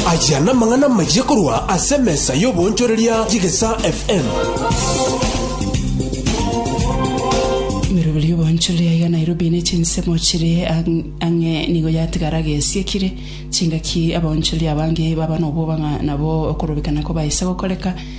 Aya namang'ana amachia korwa ase emesa y'oboonchoreria y'Egesaa FM. Emerobero y'oboonchoreria ya Nairobi ne chinsemo chire ang- ang'e nigo yatigara gesiekire chingaki abaonchoreria abange baba nobwoba ng'a nabo okorobekana kobaisa gokoreka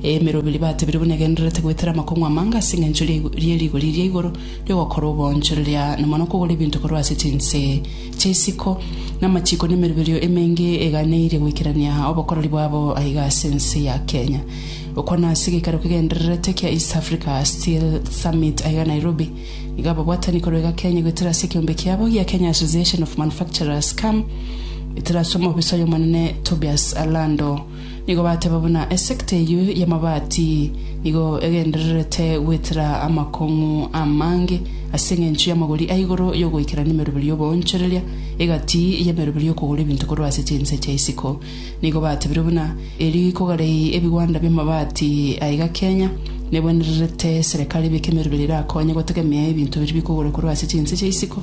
Emerobiri batebire buna egendererete goetera amakong'u amange ase engencho ye rigori ria igoro ri'ogokora oboonchoreria na mono okogora ebinto korwa ase chinse chi'isiko, na amachiko na emeroberio emenge eganeirie goikerania obokoreri bwabo aiga ase ense ya Kenya. Okwo nase egeikaro kegendererete kia East Africa Steel Summit aiga Nairobi. Nigo ababwatani korwa iga Kenya goetera ase ekeombe kiabo gia Kenya Association of Manufacturers, KAMMA, goetera ase omoofisai omonene Tobias Alando, Nigo bateba buna esekta eyio y'amabati nigo egendererete gwetera amakong'u amange, ase engencho y'amagori a igoro y'ogoikerania emeroberi y'oboonchoreria, egati y'emeroberi y'okogora ebinto korwa ase chinse chia isiko. Nigo batebire buna, Erio ikogarei ebigwanda bi'amabati aa iga Kenya, nebwenererete serekari ebeke emeroberi erakonye gotegemea ebinto biria bikogorwa korwa ase chinse chia isiko.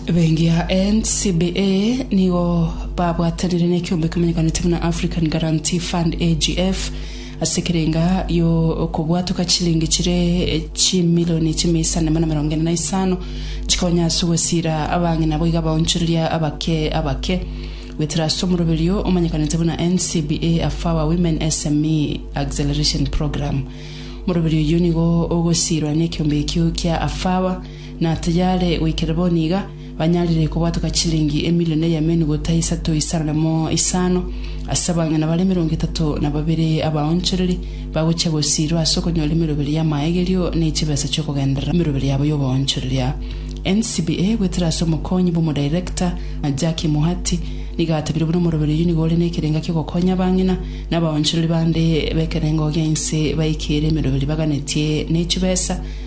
Bengia NCBA nigo babwatanire ne ekiombe kemenyekanete buna African Guarantee Fund, AGF, ase ekerenga yo okobwatoka chilingi chire chimilioni chimia isano na mirongo ene na isano chikonya ase ogosiira abang'ina boigo abaonchoreria abake abake goetera ase omoroberio omanyekanete buna NCBA Afawa Women SME Acceleration Programme. Omoroberio oyio nigo ogosiirwa ne ekiombe ekio kia Afawa na tayare goikera boni iga, banyarire kobwatoka chilingi emilion eyemenu gota isato isareremo isano, ase abang'ina bare emerongo etato na babere abaonchoreri, bagochia gosiirwa ase okonyora emeroberi y'amaegerio ne chibesa chi'okogenderera emeroberi yabo y'oboonchoreri aa. NCBA, goetera ase omokonyi bw'omodirector, Jackie Muhati, nigo atebirie buna omoroberi oyio nigo ore nekerenga ki'ogokonya abang'ina na abaonchoreri bande b'ekerengo gia inse baikere emeroberi baganetie ne chibesa,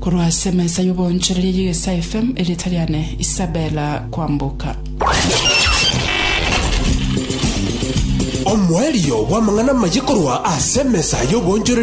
Korwa ase emesa y'oboonchoreria y'Egesaa FM, erieta riane Isabella Kwamboka. Omoerio bw'amang'ana amaye korwa ase emesa y'oboonchoreria